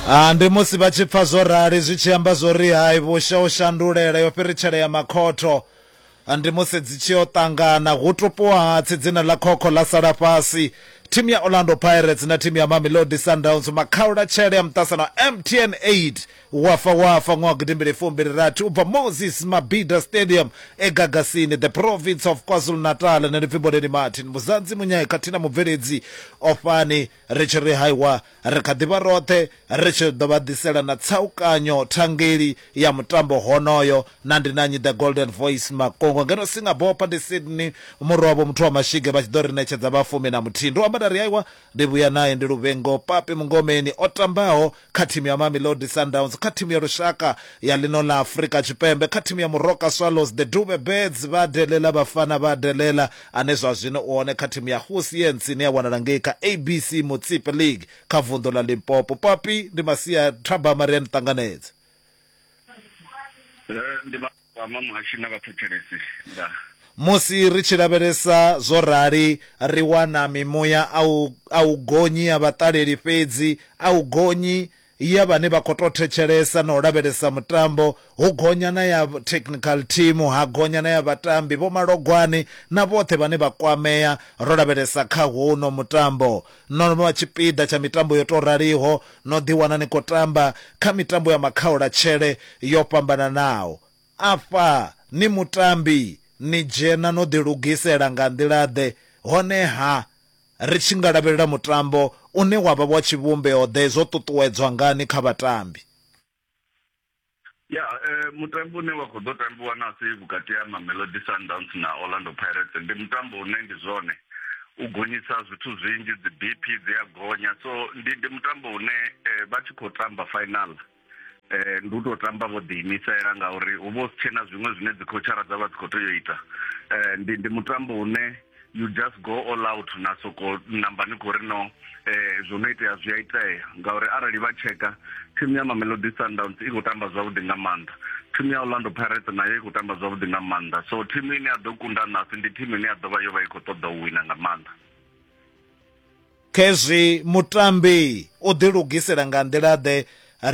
Ah, ndi musi vha tshi pfa zwo rali zwi tshi amba zwo ri hai vhusha u shandulela yo fhiritshela ya makhotho Ah, ndi musi dzi tshi yo ṱangana hu tupuwa hatsi dzina ḽa khokho ḽa sala fhasi thimu ya orlando pirates na thimu ya mamelodi sundowns makhaula tshele ya muṱasano mtn 8 wafa wafa ṅwaha gidimbili fumbili rathi u bva moses mabida stadium egagasini the province of kwazulu natal nṋe ndi pfimboleni martin muzanzi munyayi khathihi na mubveledzi ofhani Ri tshi ri haiwa, ri kha ḓi vha roṱhe, ri tshi ḓo vha ḓisela na tsaukanyo thangeli ya mutambo honoyo. Na ndi na nnyi The Golden Voice Makongo ngeno Singapore hafha ndi Sydney murwa wavho muthu wa mashige vha tshi ḓo ri ṋetshedza vha fumi na muthihi. Ndo amba nda ri haiwa, ndi vhuya nae ndi Luvhengo Papi Mungomeni o tambaho kha thimu ya Mamelodi Sundowns, kha thimu ya lushaka ya ḽino ḽa Afrika Tshipembe, kha thimu ya Moroka Swallows, the Dube Birds, vha delela Bafana vha delela, ane zwa zwino u hone kha thimu ya Hoosians ine ya wanala ngei kha ABC Motsepe League kha vunḓu ḽa Limpopo. Papi, ndi Masia Thabama, ri a ni ṱanganedza. Ndi ma. Kwama Muhashi na Vhathetshelesi nga. Musi ri tshi lavhelesa zwo rali, ri wana mimuya a u a u gonyi ya vhaṱaleli fhedzi a u gonyi ya vhane vha khou tou thetshelesa na u lavhelesa mutambo, hu gonya na ya technical team, ha gonya na ya vhatambi, vhomalogwane na vhoṱhe vhane vha kwamea ro lavhelesa kha hono mutambo. No no vha tshipiḓa tsha mitambo yo tou raliho, no ḓiwana ni khou tamba kha mitambo ya makhaulatshele yo fhambananaho. Afha ni mutambi, ni dzhena no ḓilugisela nga nḓila-ḓe, hone-ha ri tshi nga lavhelela mutambo une wa vha wa tshivhumbeo-ḓe zwo ṱuṱuwedzwa ngani kha vhatambi? ya eh, mutambo une wa khou ḓo tambiwa nasi vhukati ha mamelodi sundowns na orlando pirates ndi mutambo une ndi zwone u gonyisa zwithu zwinzhi dzi bp dzi a gonya so ndi ndi mutambo une eh, vha tshi khou tamba final eh ndi u tou tamba vho ḓiimisela ngauri hu vha hu si tshena zwiṅwe zwine dzi khotshara dza vha dzi khou tea u ita eh ndi ndi mutambo une you just go all out na soko namba ni khou ri no eh zwo no itea zwi a itea ngauri arali vha tsheka thimu ya mamelodi sundowns i khou tamba zwavhuḓi nga maanḓa thimu ya orlando pirates nayo i khou tamba zwavhuḓi nga maanḓa so thimu ine ya ḓo kunda nasi ndi thimu ine ya ḓo vha yo vha i khou ṱoḓa u wina nga maanḓa khezwi mutambi o ḓilugisela nga nḓila-ḓe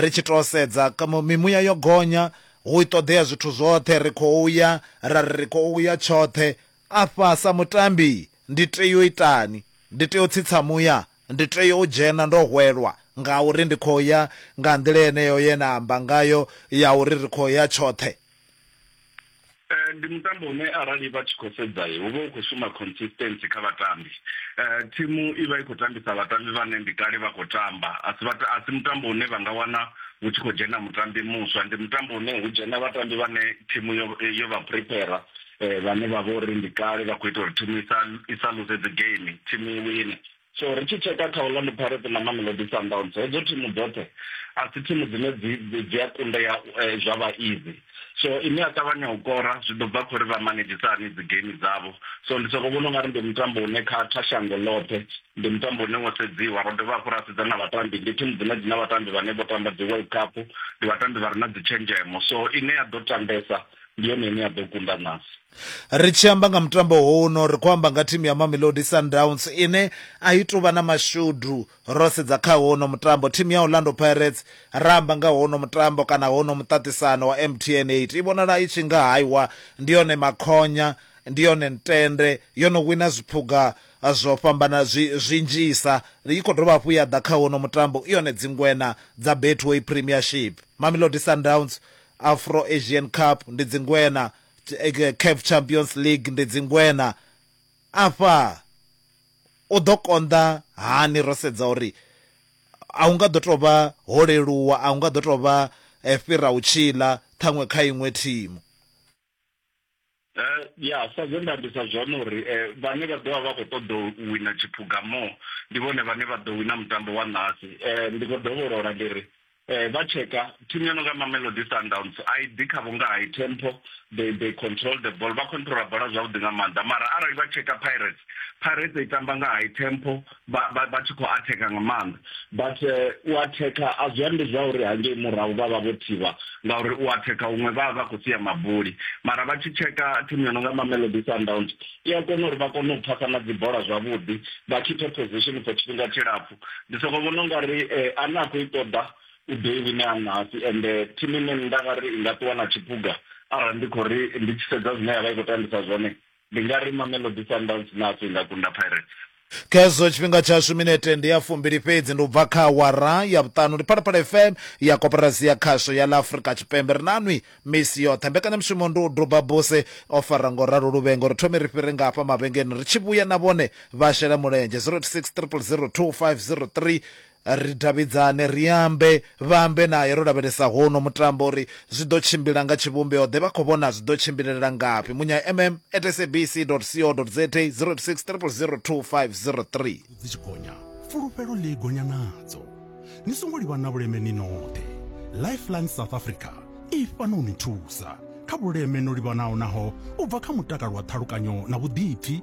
ri tshi tou sedza mimuya yo gonya hu i ṱoḓea zwithu zwoṱhe ri khou ya ra ri ri khou ya tshoṱhe Afha sa mutambi ndi tea u itani? Ndi tea u tsitsa muya? Ndi tea u dzhena ndo hwelwa ngauri ndi khou ya nga nḓila yeneyo ye na amba ngayo ya uri ri khou ya tshoṱhe? Ndi mutambo une arali vha tshi khou sedza hu vha hu khou shuma consistency kha vhatambi. Thimu i vha i khou tambisa vhatambi vhane ndi kale vha khou tamba, a si vhata, a si mutambo une vha nga wana hu tshi khou dzhena mutambi muswa. Ndi mutambo une hu dzhena vhatambi vhane thimu yo yo vha prepare. eh, vhane vha vha uri ndi kale vha khou ita uri thimu i sa luse dzi game thimu i wine so ri tshi tsheka kha orlando pirates na mamelodi sundowns hedzo thimu dzoṱhe a si thimu dzine dzi a kundea eh, zwa vha easy so ine ya ṱavhanya u kora zwi ḓo bva khori vha manedzhisa hani dzi game dzavho so ndi soko vhona ungari ndi mutambo une kha kha shango ḽoṱhe ndi mutambo une wo sedziwa ro dovha hafhu ra sedza na vhatambi ndi thimu dzine dzi na vhatambi vhane vho tamba dzi world cup ndi vhatambi vha re na dzi tshenzhemo so ine ya ḓo tambesa ndi yone ine ya ḓo kunda nasi ri tshi amba nga mutambo huno ri khou amba nga thimu ya mamelodi sundowns ine a i tuvha na mashudu ro sedza kha hono mutambo thimu ya orlando pirates ra amba nga hono mutambo kana hono muṱaṱisano wa mtn 8 i vhonala i tshi nga haiwa ndi yone makhonya ndi yone ntende yo no wina zwiphuga zwo fhambana zwinzhisa i khou dovha hafhu ya ḓa kha wono mutambo i yone dzingwena dza betway premiership mamelodi sundowns Afro Asian Cup ndi Dzingwena, Caf Champions League ndi Dzingwena. Afha u ḓo konḓa hani ro sedza uri a hu nga ḓo tou vha ho leluwa, a hu nga ḓo tou vha fhira u tshiḽa ṱhaṅwe kha iṅwe thimu. Eh, ya sa zwe nda ambisa zwone uri eh, vhane vha ḓovha vha khou ṱoḓa u wina tshiphuga mo ndi vhone vhane vha ḓo wina mutambo wa ṋahasi um eh, ndi khou dovholola ndi ri um vha tsheka thimu yo no nga mamelodi sundowns a i ḓi khavho nga high tempo they they control the ball vha controla bola zwavhuḓi nga maanḓa mara arali vha tsheka pirates pirates i tamba nga high tempo vha vha vha tshi khou atheka nga maanḓa but eh, u atheka a zwi ambi zwa uri hangei murahu vha vha vho thivha ngauri u atheka huṅwe vha vha vha khou sia mabuli mara vha tshi tsheka thimu yo no nga mamelodi sundowns i a kona uri vha kone u phasa na dzibola zwavhuḓi vha khiphe position for tshifhinga tshilapfu ndi soko vhona ungari eh, ane a khou i ṱoḓa u ḓo i wine anasi ende eh, thimu ine nda nga ri i nga ṱuwa na tshiphuga arali ndi khou ri ndi tshi sedza zwine ya vha i khou tambisa zwone Ndi nga ri Mamelodi Sundowns naso i nga kunda Pirates. Khezwo tshifhinga tshashu minete ndi ya fumbili fhedzi ndi u bva kha awara ya vhuṱanu. Ndi Phalaphala FM ya koporasi ya khasho ya ḽa Afrika Tshipembe. Ri na nwi misi yoṱhe. Mbekanyamushumo ndi u duba buse o fara ngo ralo luvhengo. Ri thome ri fhire nga hafha mavhengeleni ri tshi vhuya na vhone vha shela mulenzhe 086 000 2503. Ri davhidzane, ri ambe, vha ambe nae ro lavhelesa hono mutambo uri zwi ḓo tshimbila nga tshivhumbeo ḓe, vha khou vhona zwi ḓo tshimbilelela ngafhi. Munya MM at sabc dot co dot za, 086 000 2503. Dzi tshi gonya, fulufhelo ḽi gonya nadzo. Ni songo livha na vhuleme ni noṱhe. Lifeline South Africa i fhano u ni thusa kha vhuleme no livhanaho naho u bva kha mutakalo wa ṱhalukanyo na vhuḓipfi,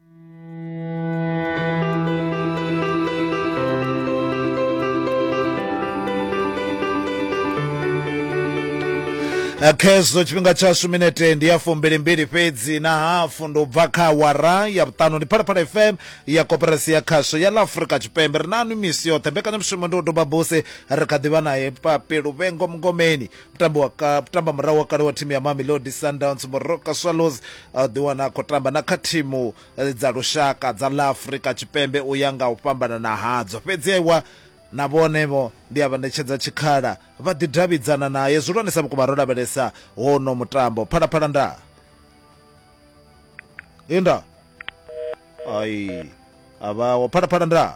Eh, khezwo tshifhinga tshashu minete ndi ya fumbilimbili fhedzi na hafu ndo bva kha wara ya vhuṱanu ndi phalaphala fm ya koperasi ya khasho ya la afurika tshipembe ri nanu misi yoṱhe mbekanyamushumo ndi u doba buse ri kha ḓivha naye papi luvhengo mngomeni mutambi wa ka tamba murahu wa kale wa thimu ya mamelodi sundowns moroka swallows a ḓi wana a khou tamba na kha thimu eh, dza lushaka dza la afrika tshipembe u ya nga u fhambanana hadzo fhedzi aiwa na vhone vho ndi a vha ṋetshedza tshikhala vha ḓi davhidzana naye zwihulwanesa vhukuma ro lavhelesa wono mutambo phalaphala nda inda ai a vhawo phalaphala nda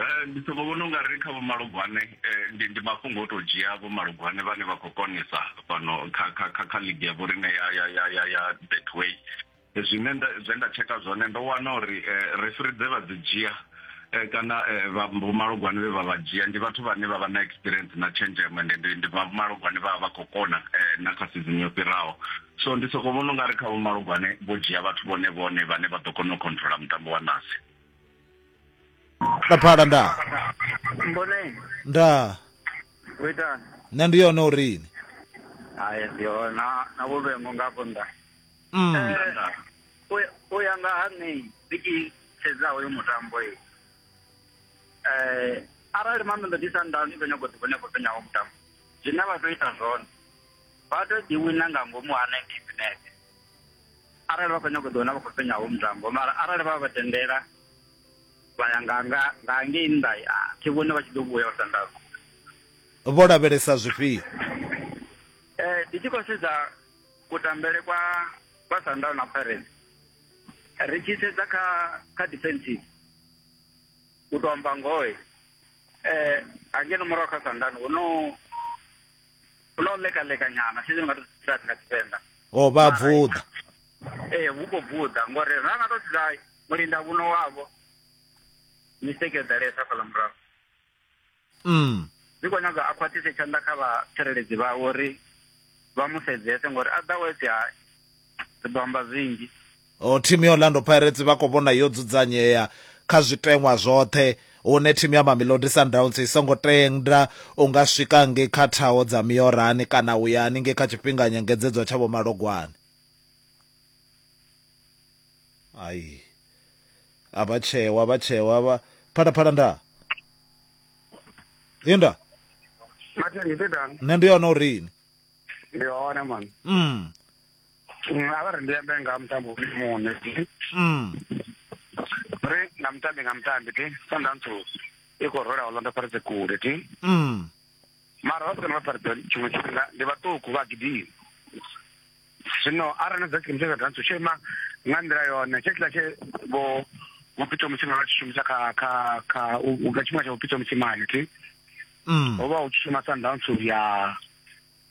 Eh, ndi soko vhona unga ri kha vhomalugwane eh, ndi ndi mafhungo o to dzhia vhomalugwane vhane vha khou konesa fhano kha kha kha kha ligi ya vhorine ya ya ya ya ya betway eh, zwine nda zwe nda tsheka zwone ndo wana uri refri dze vha dzi dzhia kana vha vhomalugwane vhe vha vha dzhia ndi vhathu vhane vha vha na experience na tshenzhemo ende ndi ndi vhomalugwane vha vha khou kona na kha season yo fhiraho so ndi soko vhona unga ri kha vhomalugwane vho dzhia vhathu vhone vhone vhane vha ḓo kona u controller mutambo wa nasi laphala nda mboneni nda kuitani nṋe ndi yone urini hayi ndiyo na na vhulwengo ngafho nda mm. Eh, u- u ya nga ha nṋe ndi tshi sedza hoyo mutambo e um arali mameḓo ndi sandani vho nyago ḓivho nyago tonyaho mutambo zwine vha tou ita zwone vha tou ḓiwina nga ngomu ha ninety minete arali vha khou nyanga u ḓiwana vha khou fhenya ho mutambo mara arali vha vha tendela vha ya nga nga nga ngei nnḓa thi vhone vha tshi ḓo vhuya vha sandaza vho lavhelesa zwifhio eh ndi tshi khou sedza kutambele kwa kwa sandal na pirates ri tshi sedza kha kha defensive u to amba ngoe eh angeno murahu kha sandal hu no hu na u lekalekanyana fhedzi ndi nga tou zwi nga tshivenḓa o oh, vha bvuḓa ee hu khou bvuḓa ngori ra nga tou sedza mulinda vhuno wavho mistake yo ḓalesa fhaḽa murahu mm ndi khou nyaga a khwaṱhise tshanḓa kha vhatsireledzi vhawe uri vha mu sedzese ngori a ḓa wese ha ri ḓo amba zwinzhi Thimu ya Orlando Pirates vha khou vhona yo dzudzanyea kha zwiteṅwa zwoṱhe hune thimu ya Mamelodi Sundowns i songo tenda u nga swika ngei kha thaho dza miorani kana u ya haningei kha tshifhinga nyengedzedzwa tsha vhomalogwane. Ai. A vha tsheo, a vha tsheo, a vha Phalaphala nda. Inda. Nṋe ndi yone uri ini. Ndi hone man. Mm. Mm, a vha ri ndi ambe nga ha mutambo uri muṋe mm. ri nga mutambi nga mutambi ti sandantsu i khou rola orlando pirates kule ti mm. mara vha sikana vha pirates tshiṅwe tshifhinga ndi vhaṱuku vha gidimi zwino arali na dza tshikimu tsha sandantsu tsho ima nga nḓila yone tshe tshiḽa tshe vho vhupito musimane vha tshi shumisa kha kha kha nga tshifhinga tsha vhupito musimane ti mm. ho vha hu tshi shuma sandantsu ya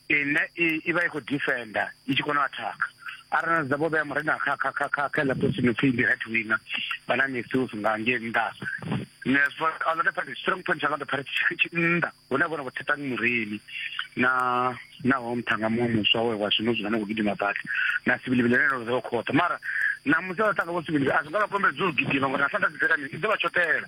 ine i vha i khou defender i tshi kona u attack arali na dza vho vhea murena kha kha kha kha kha laptop no pfhi ndi right winner vha na misuse nga nge nnḓa ne so a lot of party strong point a lot of party tshi nnḓa hune vhona vho thetang mureni na na ho mthanga muṅwe muswa we wa zwino zwino ngo gidima badi na sibili bile no zwo khotha mara na musi vha tanga vho sibili a zwi nga vha kombedza u gidima ngori na sanda dzi dzi dzi vha tshotela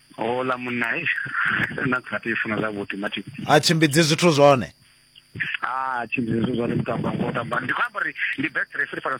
houḽa munna na khathi i funa zwavhuḓi mathi a tshimbidzi zwithu zwone a tshimbidzi zwithu zwone mutamba ngo tamba ndi khou amba uri ndi best referee fana